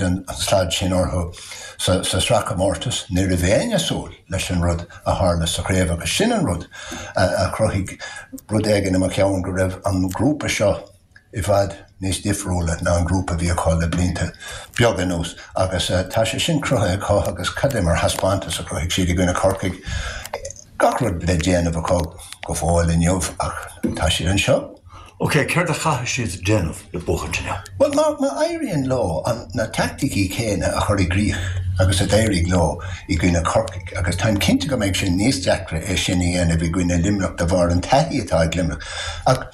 an slad sin orthu sa sraithchomórtas ní raibh éinne ag súil leis an rud a tharla sa chraobh agus sin an rud a chruthaigh rud éigin im cheann go raibh an grúpa seo i bhfad níos difriúla ná an grúpa a bhí acu le blianta beaga anuas agus tá sé sin cruthaithe acu agus cad é mar thaispeántas a chruthaigh siad i gcoinne Corcaigh. Gach rud le déanamh acu go fóill inniu ach tá siad anseo. OK, céard a chaithfidh siad a dhéanamh le buachaint inniu? Bhuel, má éiríonn leo na taicticí céanna a chur i gcríoch agus a d'éirigh leo i gcoinne Corcaigh, agus táim cinnte go mbeidh sé sin níos deacra é sin a dhéanamh i gcoinne Luimneach de bharr an taithí atá ag Luimneach, ach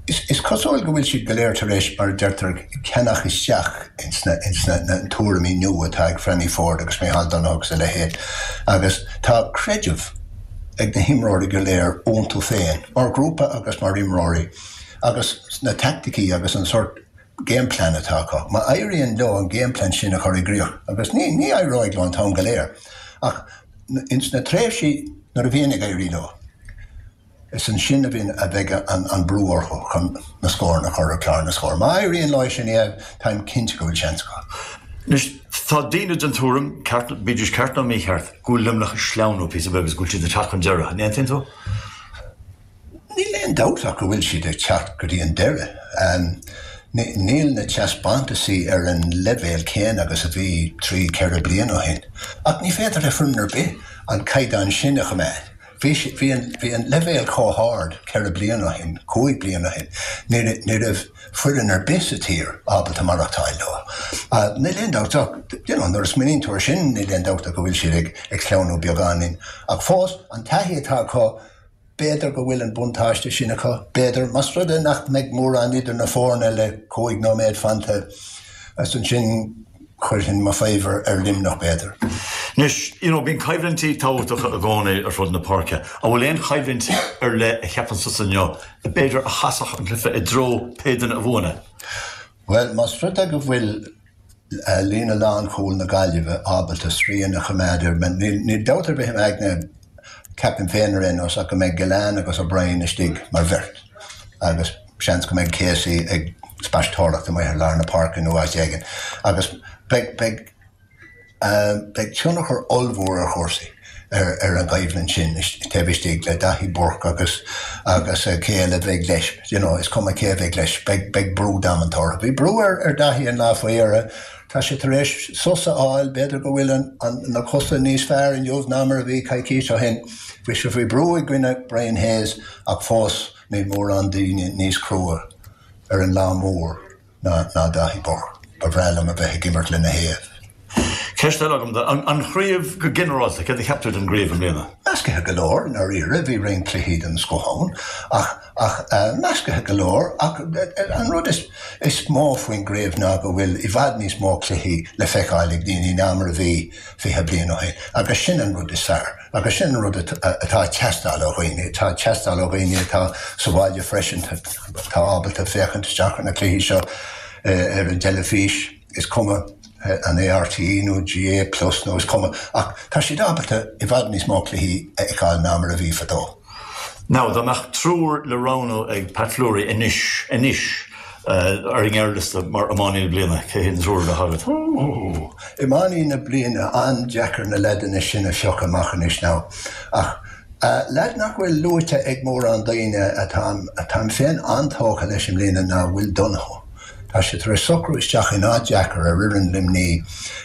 is cosúil go bhfuil siad go léir tar éis, mar a deirtear, ceannach isteach insna tuairimí nua atá ag Franny Forde agus Micheál Donoghue agus a leithéid, agus tá creideamh. ag na himreoirí go léir iontu féin, mar ghrúpa agus mar imreoirí, agus na taicticí agus an tsórt game plan atá acu. Má éiríonn leo an game plan sin a chur i gcríoch, agus ní éireoidh leo an t-am go léir, ach ins na tréimhsí nuair a bhíonn ag éirí leo, Is ansin a bhí, a bheidh an brú orthu chun na scóranna a chur ar chlár na scór. Má éiríonn leo é sin a dhéanamh, táim cinnte go bhfuil seans acu. Anois, tá daoine den tuairim, bídís ceart nó mícheart, go bhfuil Luimneach ag sleamhnú píosa beag agus go bhfuil siad ag teacht chun deiridh. An aontaíonn tú? Níl aon dabht ach go bhfuil siad ag teacht go dtí an deireadh. Níl na teaspántasaí ar an leibhéal céanna agus a bhí trí, ceithre bliana ó shin, ach ní féidir le foireann ar bith an caighdeán sin a choimeád. Bhí an leibhéal chomh hard ceithre bliana ó shin, cúig bliana ó shin, ní raibh foireann ar bith sa tír ábalta maireachtáil leo. Níl aon dabht ach, nuair a smaoiníonn tú ar sin, níl aon dabht ach go bhfuil siad ag sleamhnú beagáinín. Ach fós, an taithí atá acu, b'fhéidir go bhfuil an buntáiste sin acu, b'fhéidir. Más rud é nach mbeidh mórán idir na foirne le cúig nóiméad fanta, is ansin, chuirfinn mo fabhar ar Luimneach b'fhéidir. Anois, you know, bíonn coimhlintí tábhachtacha i gcónaí ar fud na páirce. An bhfuil aon choimhlint ar leith a cheapann tusa inniu, b'fhéidir, a chasfadh an cluiche i dtreo pé duine a bhuann é? Bhuel, más rud é go bhfuil líne lánchúil na Gaillimhe ábalta srian a choimeád ar, níl dabht ar bith im aigne, ceapaim féin ar aon nós, ach go mbeidh Gillane agus O'Brien istigh mar bheirt agus, Seans go mbeidh Casey ag spaisteoireacht amuigh thar lár na páirce nó áit éigin agus beidh tionchar ollmhór ar chúrsaí ar an gcoimhlint sin taobh istigh le Daithí Burke agus pé eile a bheidh leis. Is cuma cé a bheidh leis, beidh brú damanta orthu. Bhí brú ar Daithí an lá faoi dheireadh. Tá sé tar éis sos a fháil, b'fhéidir go bhfuil na cosa níos fearr inniu ná mar a bhí coicís ó shin. Bhí sé faoi brú i gcoinne Brian Hayes ach fós, Níl mórán daoine níos crua ar an lá mór ná Daithí Burke. Ba bhreá liom a bheith ag imirt lena thaobh. Ceist eile agam duit. An chraobh go ginearálta, céard a cheap tú den gcraobh i mbliana? Meascaithe go leor, i ndáiríre. Bhí roinnt cluichí den scoth ann. Ach meascaithe go leor. Ach an rud is mó faoin gcraobh ná go bhfuil i bhfad níos mó cluichí le feiceáil ag daoine ná mar a bhí fiche bliain ó shin. Agus sin an rud is fearr. Agus sin an rud atá ag teastáil ó dhaoine. Tá ag teastáil ó dhaoine atá sa bhaile freisin, atá ábalta féachaint isteach ar na cluichí seo ar an dteilifís, is cuma an é RTÉ nó GAA plus nó is cuma, ach tá siad ábalta i bhfad níos mó cluichí a fheiceáil ná mar a bhí fadó. Now, dá mbeadh triúr le roghnú ag Pat Fleury anois, anois, ar an ngearrliosta mar iománaí na bliana, cé hé na triúr a bheadh agat? Ooh! Iománaí na bliana, an-deacair na leaideanna sin a phiocadh amach anois now. Ach leaid nach bhfuil luaite ag mórán daoine atá, atáim féin an-tógtha leis i mbliana ná Will O'Donoghue. Tá sé tar éis socrú isteach in áit dheacair ar fhoireann Luimnigh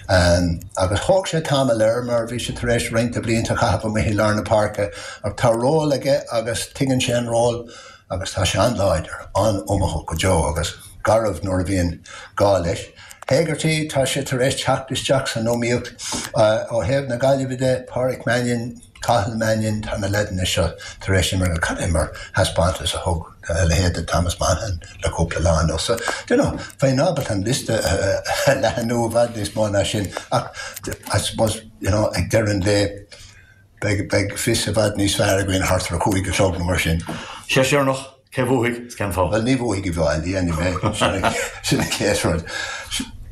agus thóg sé tamall air mar bhí sé tar éis roinnt blianta a chaitheamh amuigh i lár na páirce ach tá ról aige agus tuigeann sé an ról agus tá sé an-láidir, an-iomaíoch go deo agus garbh nuair a bhíonn gá leis. Hegarty, tá sé tar éis teacht isteach san iomaíocht ó thaobh na Gaillimhe de, Pádraic Mannion, Cathal Mannion, Tá na leaideanna seo tar éis imirt go calma, an taispeántas a thug a leithéid de Thomas Monaghan le cúpla lá anuas. So, do you know, bheinn ábalta an liosta a leathnú i bhfad níos mó ná sin ach I suppose, you know, ag deireadh an lae beidh a fhios i bhfad níos fearr againn thart ar a cúig a chlog nó mar sin. Seisearnach, Cé bhuafaidh is cén fáth? Bhuel, ní bhuafaidh siad i bhfad, anyway, sin an chéad rud.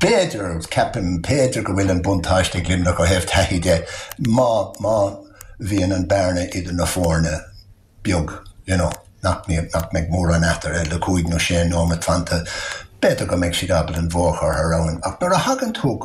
B'fhéidir, ceapaim, b'fhéidir go bhfuil an buntáiste ag Luimneach ó thaobh taithí de má bhíonn an bhearna idir na foirne beag, you know, nach mbeidh mórán eatarthu le cúig nó sé nóimeat fanta, b'fhéidir go mbeidh siad ábalta an bua a chur abhaile ach nuair a thagann tú